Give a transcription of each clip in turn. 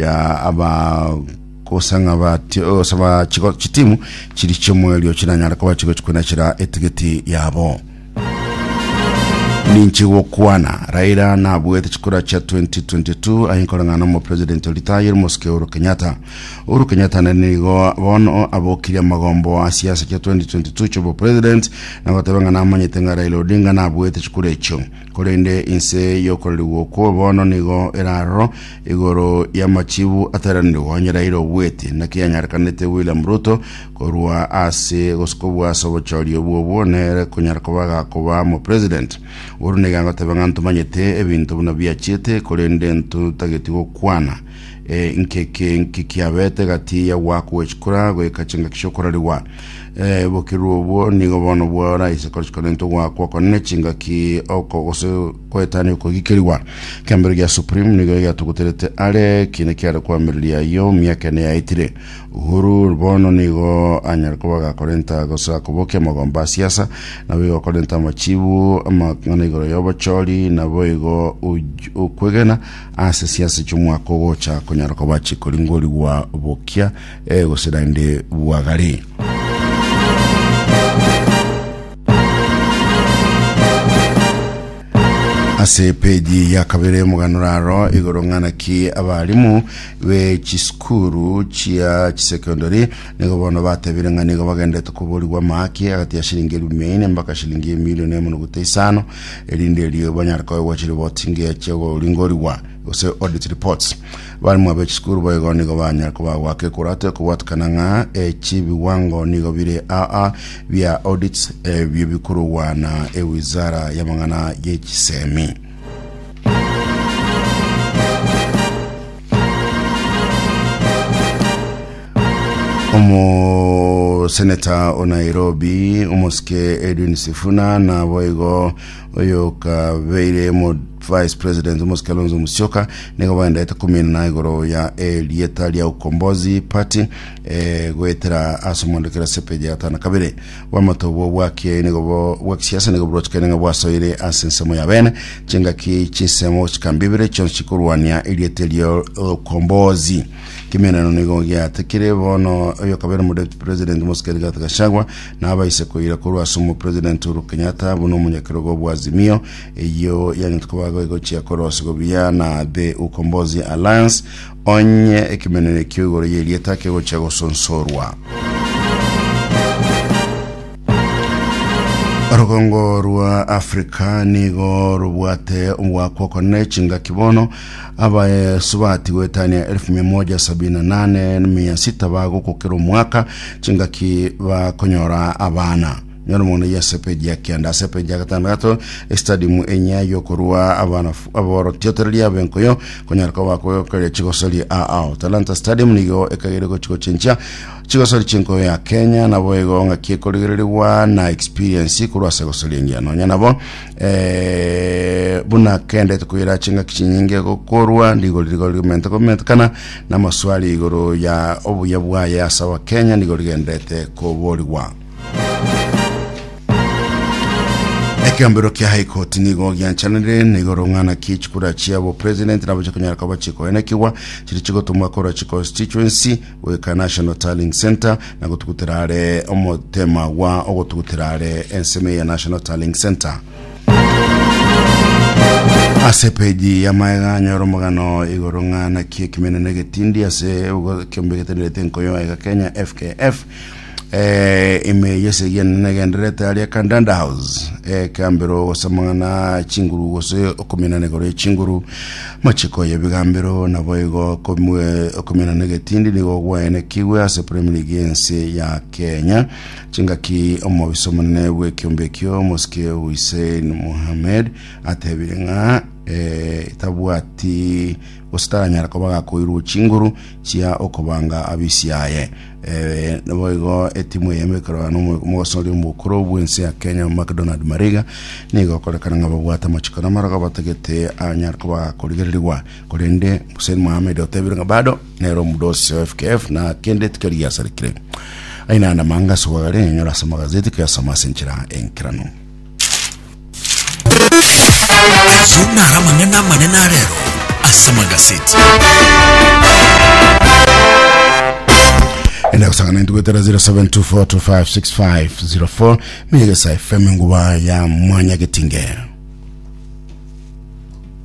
ya abagosang'a bati- ose bachigo- chitimu chiri chiomoerio chinanyare koba chigochi koinachera etigiti yabo ninche gokwana raira nabuete chikura chia 2022 aye nkoreng'ana omopresident oritayire mosike uhuru kenyatta uhuru kenyatta nere nigo bono abokirie amagombo a siasa chia 2022 chiobopresident nagoteba ng'a namanyete ng'a raila odinga nabuete chikura echio Korende inse y'okororigwa okwo bono nigo eraroro igoro y'amachibu ateranirwe onyereire obweti, naki anyarekanete William Ruto korwa ase gosukwa bw'ase obochori obwo obwo nere konyara koba gakoba mo president. Oru nigo agoteba ng'a ntomanyete ebinto buna biachiete korende ntotageti gokwana. eh, nkeke nki kiabete gati ya gwaku gwechikura goika chingaki chiokorarigwa eh, bokiru obwo nigo bono bwora ise korichikonento gwakwa konene chingaki oko gose koetania okogikerigwa kiambero gia supreme nigo giatuguterete are kine kiare kwamireria ayo miaka ene yaitire uhuru bono nigo anyare kuba gakorenta gose akobokia amagomba a siasa nabo igo akorenta amachibu amang'ana igoro yobochori nabo igo uj- ukwegena Ase siasa chi'omwaka ogocha konyara koba chikoringorigwa bokia eh, gose naende bwagare. ase peji ya kabere moganora aro igoro ng'ana ki abarimu be chisukuru chia chisekondari nigo bono batebire ng'a nigo bagendete koborigwa amaki agati ya shilingi elfu mia ine mpaka shilingi emilioni emo noguta isano erinde erio banyare koegwa chiripoti ngiya chiagoringorigwa, gose audit reports. Abarimu abe chisukuru boigo nigo banyare kobagwa kekurate kobwatikana ng'a echi biwango nigo bire aa bia audits ebio bikorogwa na ewizara y'amang'ana y'echisemi. omoseneta o nairobi omosike edwin sifuna nabo igo oyokabeire mo vice president omosike alonso musioka nigo baendaete kominana igoro ya erieta ria ukombozi party eh, goetera ase omondokera sepeji ya gatano kabere Oboamate obwo bwa kiaye nigo bo, bwa kisiasa nigo borochekane ng'a bwasoire ase ensemo ya bene, chingaki chinsemo chikambibire chionsi chikorwania erieta erio Okombozi. Kemenano nigo giatekire bono oyokabere mu deputy president Moses Rigathi Gachagua na abaise koira korwa ase omo president Uhuru Kenyatta buna omonyakerogo bwa Azimio eyio yang'ete koba goegochia korosigo buya na The Ukombozi Alliance Onye ekemenero ekio igoro y'erieta kegochia gosonsorwa, orogongo rwa Africa nigo robwate omogoako okonene chingaki bono, abasubati goetania 178,600 bagokokera omwaka chingaki bakonyora abana. Nyoro mono ya sepeji ya kenda ase peji ya gatandatu estadium enya yokorua abana aboro tiotereria abenkoyo konyara koba koyokeria chigosori ao talanta stadium nigo ekagere gochiko chinchia chigosori chinkoyo ya kenya nabo ego ng'aki ekorigererigwa na experience korwa ase gosori engiya nonya nabo eh, buna kende tukoira ching'aki chinyinge gokorwa rigori rigori gomente gomentekana na amaswali igoro ya obuya bwaye ase abakenya nigo rigendete koborigwa Ekeombero kia High Court nigo gianchanire na igoro ng'ana ki chikura chia bo president nabo chikonyara koba chikoenekigwa chiri chigotumwa korwa chi constituency goika National Tallying Center na gotugutera are omotema gwa ogotugutera are ensemo ya National Tallying Center. ase peji ya maega nyora omogano igoro ng'ana ki ekimenene getindi ase ekiombe getenerete nkoyo ega Kenya FKF Eh, ime yesegiana negenderete aria Kandanda House eh, kambero gosamang'ana chinguru gose okominana igoro ye chinguru machiko ya bigambero nabo igo komwe- okominana egetindi nigo gwaenekigwe ase Premier League yense ya Kenya chingaki omobisa omonene bw'ekiombe ekio Mosike Hussein Mohamed atebire ng'a eh, tabwati gose taranyara koba gakoirwe chinguru chia okobanga abisiaye Ee, naboigo etimu eye emekorano mogosoria omokoro bwensi ya Kenya McDonald Mariga nigo okorekana ng'a babwate amachiko na amarogo batagete anyare koba korigererigwa korende Hussein Mohamed otebire ng'a bado nere omudosi wa FKF na kende tikeri giasarekire aina namanga asogare enyora ase magazeti kuyasoma ase enchera enkeranu Ayio naro amang'ana amanene a rero ase Magazeti. enda gusangana intu gwetera 0724256504 meyegesa fm nguba ya mwanya getinge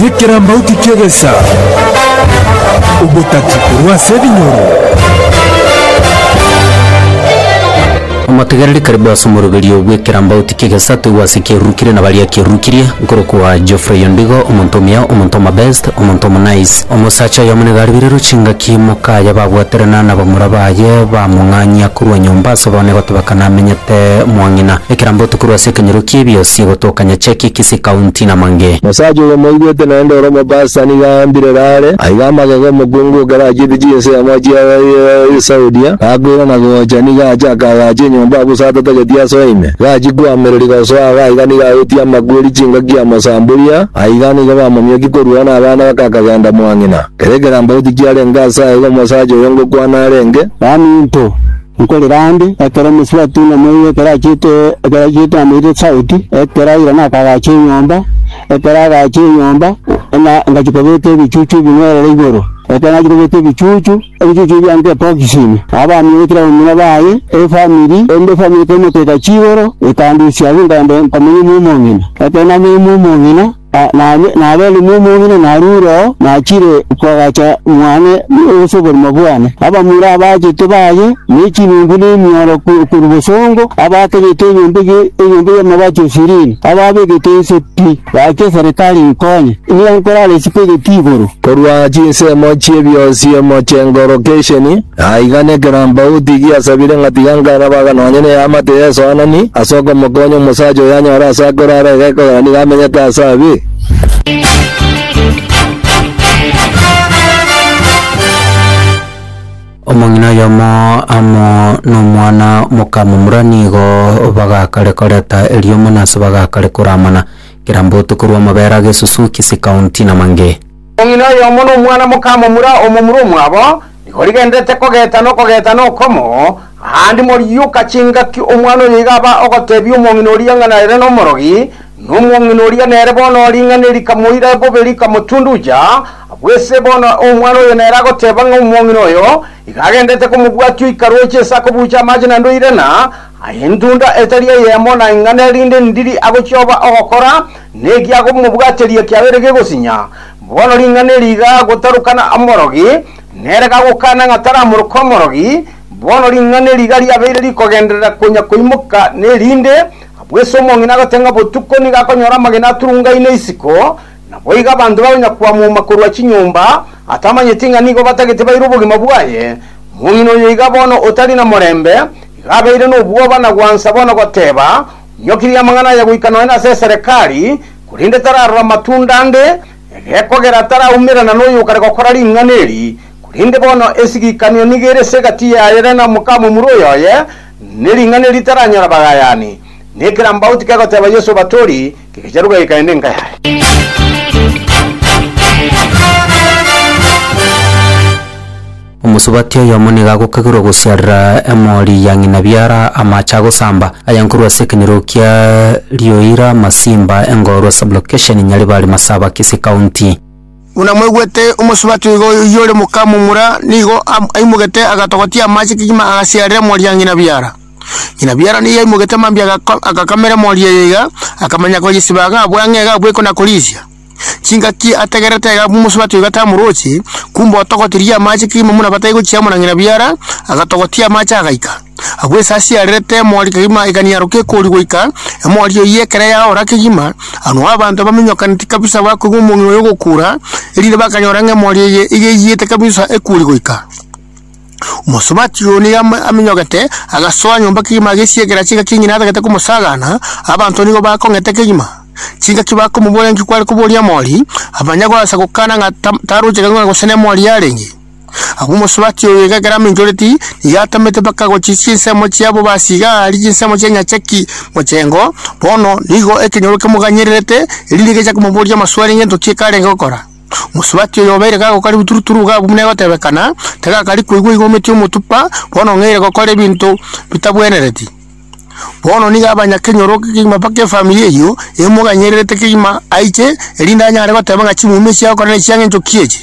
Nekerambauti ki'egesa, obotati korwa ase ebinyoro. Omotegereri karibu ase omoroberio bw'ekerambauti ki'egesa toigwe ase kiarurukire na baria kiarurukirie, nkorokwa Geoffrey Ondigo, omonto omuya, omonto omobest, omonto omonice. Omosacha oyomo nigo aribirirwe chingaki mokaye babwaterana nabamura baye bamong'anyia korwa nyomba ase obonene gotebeka namenyete mwang'ina. Ekerambauti korwa ase ekenyoro ki'ebiosi egotoka. Onye cheki kisi kaunti na mange. Mosacha oyo moigwete naende ore omobasta nigo aambire Raare, aiga amagega omokungu okarachete chinse ya mochie ya Saudia, gakwera na gocha, nigo ache akagacha enyomba abwo saa atatageti asoe ime. Gachia koamereri gosoa ago aiga nigo aetie amakweri chingaki ya mosamburia, aiga nigo bamomioki korwao na abana bake akagenda mwa ng'ina. Kera ekeramba goti kiarenge asaye igo omosacha oyo ngokwana arenge. Nani into? Nkorire aande, ekero omosubati namoiga ekero achiete, ekero achiete namoirire esauti, ekero aira na akagacha enyomba, ekero agacha enyomba, na ngachia kobeka ebichuchu ebing'werere igoro. Ekero nachia kobeka ebichuchu, ebichuchu ebio bianka ebokisi ime. Abamia be kera bamura baye, efamiri, erinde efamiri ekero emoteka chigoro, ekandusia abwo nkaenda nkamenya omoume ong'ina. Ekero namenya omoume ong'ina. Naende naberire nomong'ina narure oo, nachire koagacha mwane ase oborimo bwane. Abamura abaachete baye, ne chinungu ne emioro korwa bosongo, abaakanyete enyomba enyomba y'amabaati o sirini, abaabegete inse pi, baaki eserekari inkonye. Nigo nkorara isiko egeti igoro. Korwa chinsemo chi'ebionsi omochie ngoro kesheni, Aiga nekerambauti giasabire ng'a tiga nkarabaga nonya neamate y'esoanani ase okomokonya omosacha oyo anyore ase akorara iga ekogera nigo amenyete ase abe. Omong'ina oyomo amo nomwana moka momura nigo bagakare koreta eriomo na ase bagakare koramana, kerambauti korwa amabere age Suzuki, Sikaunti na Mange. Omong'ina oyomo nomwana mokamomura omomura omwabo, nigo rigendererete kogeta nokogeta nokomo, aande morioka chingaki omwana oyo iga aba ogotebia omong'ina oria ng'a nere nomorogi, na omong'ina oria nere bono ring'ana rikamoira bobe rikamotunduja, abwo ase bono omwana oyo nere agoteba ng'a omong'ina oyo iga agendererete komobwatia oikaroche ase akobuucha amache na ndoirana, Aye intunda etari eyemo na ing'ana erinde ndiri agochioba ogokora, neki agomobwateria kiagere gegosinya. Bono ring'ana eri igagotarukana omorogi, nere gagokana ng'a taramoroke omorogi, bono ring'ana eri iga riabeire rikogenderera konya koimoka nerinde, bw'ense omong'ina agote ng'a botuko nigo akonyora amagena aturungaine isiko, Naboigo abanto bakonyakwamoma korwa chinyomba, atamanyeti ng'a nigo batagete baire obogima bwaye. Omong'ina oyo iga bono otari namorembe, iga abeire nobwoba na gwansa bono goteba, Onyokirie amang'ana aya goika nonya ase eserekari, korende tararora matunda ande, egekogera taraumerana noyo okare gokora ring'ana eri. Korende bono esigikanio nigo ere ase egati yaye na nomokamomura oyoye, ne ring'ana eri taranyora bagayani. Nekerambaoti kegoteba Yeso batori, Kegacha ruga gekaenda enka yaye. Omosubati oyomo nigo agokagirwa gosiarera emori ya ng'ina biara amache agosamba, aya nkorwa ase ekenyorokia Rioira, Masimba, Engorwa Sub-location, Nyaribari, Masaba, Kisii County. Buna mwaigwete, omosubati oigo oyio ore moka momura nigo am- aimogete agatogotia amache kegima agasiarera emori ya ng'ina biara. Ng'ina biara nigo yaimogete mambia agako- agakamera emori eye iga, akamanya koyesiba iga abua ng'a iga abua ekona korisia. Chingaki ategererete iga abua omosubati oiga tamorochi, kumbe otogotirie amache kegima buna batai gochia amo na ng'ina biara, agatogotia amache agaika. Agwo esasi yarerete emori kegima ekanyaroka ekori goika, emori eyio ekero yaora kegima, anwo abanto baminyokaneti kabisa bakoigwa omong'ina oyo ogokura, erinde bakanyora ng'a emori eye iga eiyete kabisa ekuri goika. Omosubati oyo nigo aminyogete, agasoa nyomba kegima agesiegera chingaki ng'ina atagete komosagana, abanto nigo bakong'eta kegima. Chingaki bakomoboria nki kware koboria omori, abanya goasa gokana ng'a tarochete ng'a gose nemori yarenge. Agwo omosubati oyo iga ekero aminchoreti, nigo atamete mpaka gochia chinsemo chiabo basiga ari chinsemo chi'enyacha ki mochengo, bono nigo ekenyoro kemoganyererete, erinde gecha komoboria amaswali ng'ento ki ekarenge gokora. Mosubati oyo obeire gagokaribu turu-turu iga abwo buna egotebekana, tagakari koigwa iga ometie omotupa, bono ng'eire gokora ebinto bitabwenereti. Bono nigo abanyakenyoro kegima mpaka efamiri eyio emoganyererete kegima aiche, erinde anyare goteba ng'a chimumi echi agokora nechia ng'enchoki echi.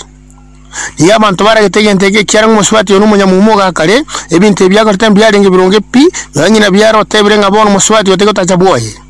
Nigo abanto baragete egento eke ekiagera ng'a omosubati oyo nomonyamuma ogaa kare, ebinto ebio biakorete mbiarenge bironge pi, nonye ng'ina biarotebire ng'a bono omosubati oyo taigotacha bwoye.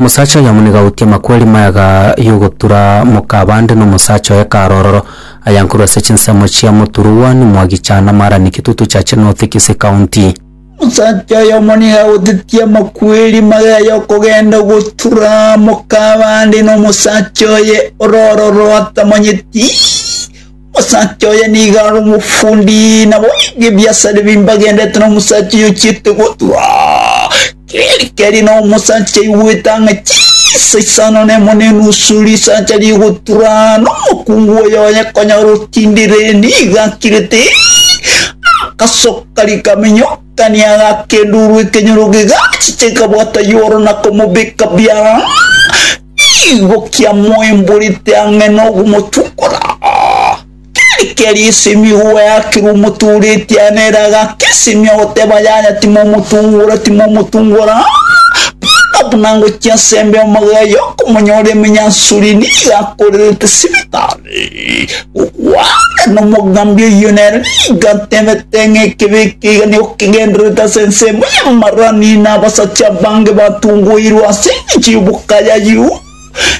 Omosacha oyomo nigo agoutie amakweri mayaga y'ogotura moka abande, na omosacha oye kare ororo ayankorwe ase chinsemo chia Moturuwani mwa Gicha na Marani, Kitutu Church, North Kisii County. Omosacha oyomo nigo agoutetie amakweri mayaga y'okogenda ogotura moka abande, na omosacha oye ororo ororo atamanyeti. Omosacha oye nigo are omofundi, nabo aige ebiasa ebi mbagendete nomosacha oyo ochiete gotua. Keri keri na omosacha aigwete ang'e chisa isano nemo na enusu risacha rigotura, na omokungu oyo oye konyora otindire, nigo akirete agasoka rikamenyokania agaka enduru ekenyoro gegachicha ekabwata Yohana akamobeka biara. Igo kiamoimborete ang'e nogomochukora. Keri keri esemi goeakirwe omotoreti ane ere agakesemia goteba yaya timomotungora timomotungora buna buna ngochia ase embe magega y'okomonyora emenyansuri nigo akorerete sibitari. Gokwana nomogambi oyio nere nigo atebete ng'a ekebe eke iga nigo kegendererete ase ensemo y'amarani na abasacha abange batungoirwe ase engencho y'obokaya ayio.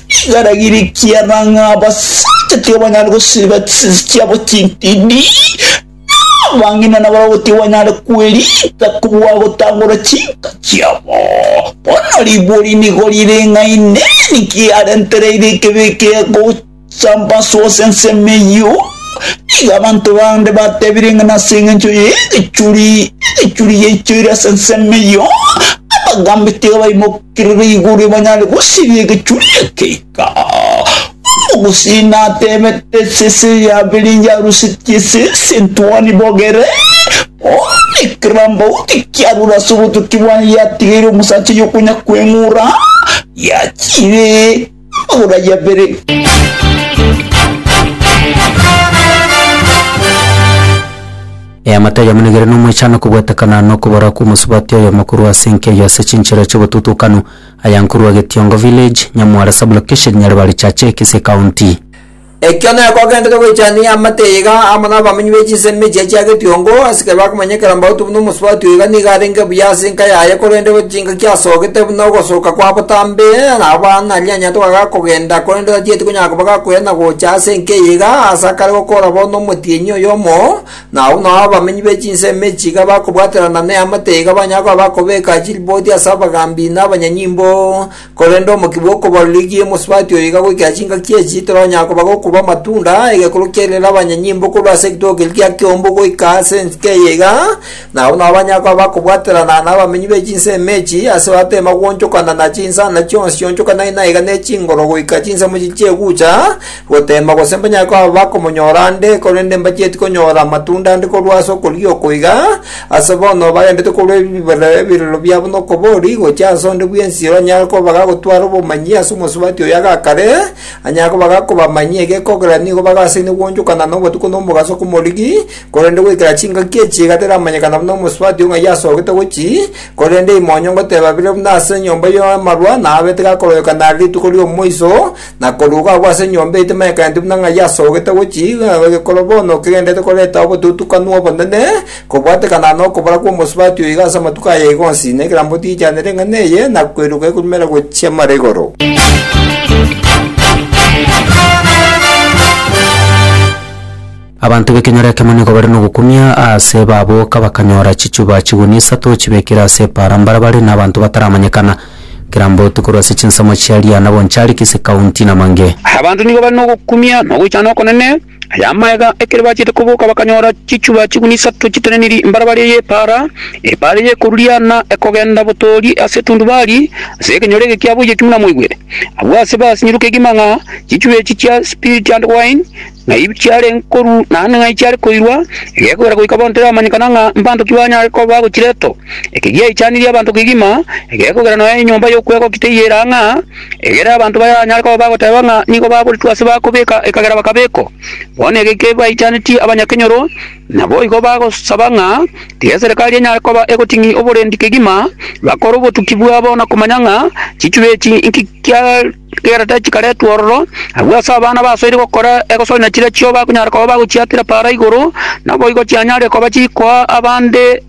Nigo aragirie ekiagera ng'a abasacha tibabanyare gosiba chisese chiabo chintindi, na abang'ina nabarabwo tibanyare kwerita kobua gotangora chinka chiabo. Bono ribuori nigo rire ng'a Inee! Ninki arentereire ekebe eke gocha Chiambaso ase ensemo eyio, nigo abanto bande batebire ng'a nase engencho y'egechuri egechuri yaichoire ase ensemo eyio, abagambi tiga baimokerere igoro banyare gosiria egechuri ekeika. Omogusii atebete esese yabiringe arusetie esese entuoni bogere, bono ekerambauti kiarure ase obotuki bwaye yatigeire omosacha oyo konya kweng'ura, yachiire. Amang'ana ya kabere. Eamate ayamonigire nomoichano kobwatekana nokobora kw'omosubati oyomo korwa ase enkeyo ase chinchera chi'obotutukanu aya nkorwa Getiongo Village, Nyamwara Sub-location, Nyaribari Chache, Kisii County. Ekio nekogenderere goichania amate aiga amo nabamanyi be chinsemo echia chia getiongo, ase ekero bakomanyekana mbauti buna omosubati oiga nigo arenge buya ase enka yaye, korende gose chingaki asogete buna ogosoka kwa botambe, nabo banarianyeretwe kogaga kogenda, korende tatieti konyara koba gakoira na gocha ase enka eye iga, ase akare gokora bo nomotienyi oyomo, na abwo nao abamanyi be chinsemo echi iga bakobwaterana neamate iga banyare koba bakobeka chiriboti ase abagambi na abanyanyimbo, Korende omokia bw'okobaroreria omosubati oyo iga goikera chingaki echi, toranyara koba gokoba amatunda, egekuru kiairire abanyanyimbo korwa ase egitogo keria kia kiombu goika ase ensike eye iga, na abwo nabo banyara koba bakobwaterana n'abamenyi be chinsemo echi, ase batari bagwonchokana na chinsana chionsi chionchokanai naiga ne chingoro goika chinsemo chiria chiegucha, Goteema gose mbanyare koba bakomonyora ande, korende mbachieti konyora amatunda ande korwa ase okorigia oko iga, ase bono bagendete korwa ebiberero ebirero biabo nokobori, gochia ase onde bw'ensiro anyare koba gagotwara obomanyi ase omosubati oyo agakare, anyare koba gakobamanyia egekogera nigo bagasaine gwonchokana nobotuko nomogaso komorigi, korende goikera chingaki echi iga teramanyekana buna omosubati o ng'a yasogete gochi, korende imoonyo ngoteba bire buna ase enyomba y'amarwa, na abete gakororekana are rituko ri'omoiso, na koruga agwo ase enyomba eye timanyekane buna ng'ai asogete gochia iga na igekoro bono kegenderete koreta obotutukanu obonene, kobwatekana nokobora kw'omosubati oyo iga ase amatuko aya iga onsi, na ekerambe otiichanere eng'ana eye, na kweruka ekurumere gochia mara igoro. Abanto b'ekenyoro ekemo nigo bare nogokumia aase baboka bakanyora chichuba chigunia isato chibekire ase epaara mbarabare na abanto bataramanyekana, Kirambotu korwa ase chinsemo chia Liana Bonchariki ase County Namange. Abanto nigo bare nogokumia na ogoichana okonene aya amaega ekero bachete koboka bakanyora chichuba chigunia isato chiteneniri mbarabare y'epaara, epaara eye ekorwa Liana ekogenda botoori ase etundubari ase ekenyoro ege kiaboiyo ekimo namoigwere. Abwo aase basinyiru kegima ng'a chichuba echi chia Spirit and Wine, na ebi chiare nkoru naende ng'ai chiare koirwa, egekogera goika bono teramanyekana ng'a mbanto ki banyare koba bagochiretwa. Eki giaichanirie abanto kegima, egekogera nonya enyomba y'okwegokia teiyo eraa ng'a egere abanto baranyare koba bagoteba ng'a nigo baboretwe ase bakobeka ekagera bakabekwa. Bono ege kebaichanetie abanyakenyoro, naboigo bagosaba ng'a tiga eserekari enyare koba egoting'ia oborendi kegima, bakore obotuki bwabo na komanya ng'a chichube echi inki chiarenge. Chikaratachi chikaretwe ororo, agwo ase abana basoire gokora egosoimia chiria chio bakonyara koba bagochiakera para igoro, naboigo chianyare koba chikoa abande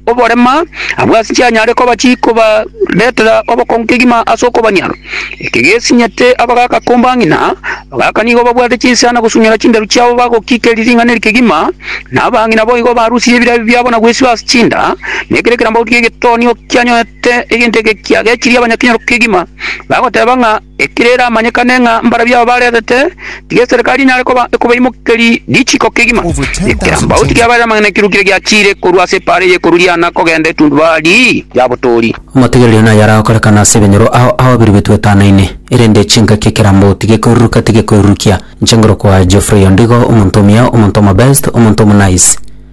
oborema, agwo ase chianyare koba chikobaretera obokongu kegima ase okobanyara. Eke gesinyete abagaka komba ng'ina, abagaka nigo babwate chinsiana gosunyora chinderu chiabo bagokikeria ring'ana eri kegima, na abang'ina boigo barusirie ebirabi biabo na gwesiba ase chinda, na ekero ekerambaoti ki'egetonio kianyorete egento eke kiagechirie abanyakenyoro kegima. Bagoteba ng'a ekero eramanyekane ng'a mbarabwo aba baretete, tiga eserikari enyare koba ekobaimokeria richiiko kegima. Ekerambauti kiabarire amang'ana ekiruu kiria giachiire korwa ase epaara eye korudiana kogenda etundubari ya botoori. Amategereri naye aragokorekana ase ebenyoro ao ababiri betwetanaine, erende chingaki ekerambauti gekoiruruka tigekoirurukia. Inche ngoro koa Geoffrey ondigo, omonto omuya, omonto omobest, omonto omonice.